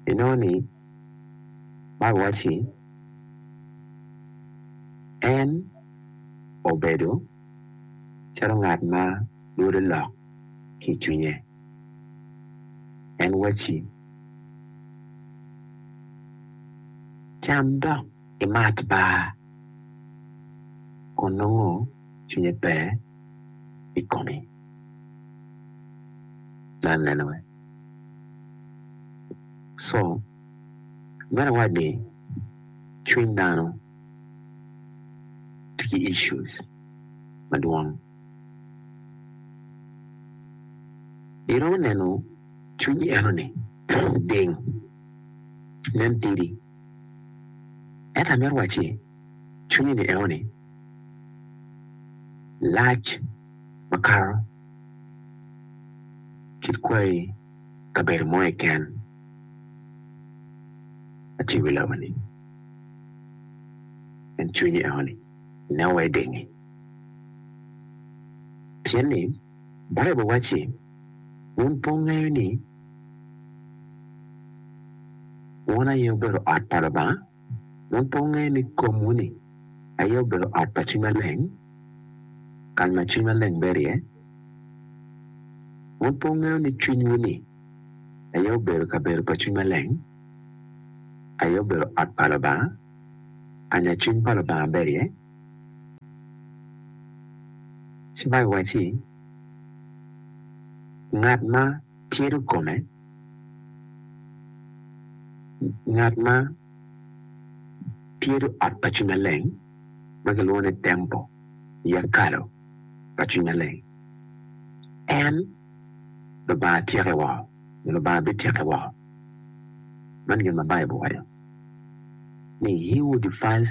Inongo ni, Bible waco ni, En obedo calo ngat ma lwode lok ki i cwinye. En wacci, 'Cam dok imat baa, kun nongo cwinye pe i komi. Ineno? Co. Meno iwac ni cwiny dano tye ki issues madwong. Iromo neno cwinyi enoni ding, nen tidi. Ento amito wacci cwinyi-ni enoni lac makato. Kit kwayi kabedo mo keken aci wi lama ni en cwinyi eno ni ineno wa idengi pien ni Baibul wacci wun pe wungeyo ni wun aye obedo ot pa Lubanga? Waponge ni komwu ni, aye obedo ot pa Cwiny Maleng, kany ma Cwiny Maleng bedo iye. Waponge ni cwinywu ni, aye obedo kabedo pa Cwiny Maleng, aye obedo ot pa Lubanga, kanya Cwiny pa Lubanga bedo iye. Ci Baibul wacci, Ngat ma. Keto kome ngat ma tyedo ot pa Cwiny Maleng ma kilwongo ni tempo i ekalo pa Cwiny Maleng. En Lubanga tyeke woko, nyo Lubanga bityeke woko. Man gin ma Baibul waco ni He who defiles.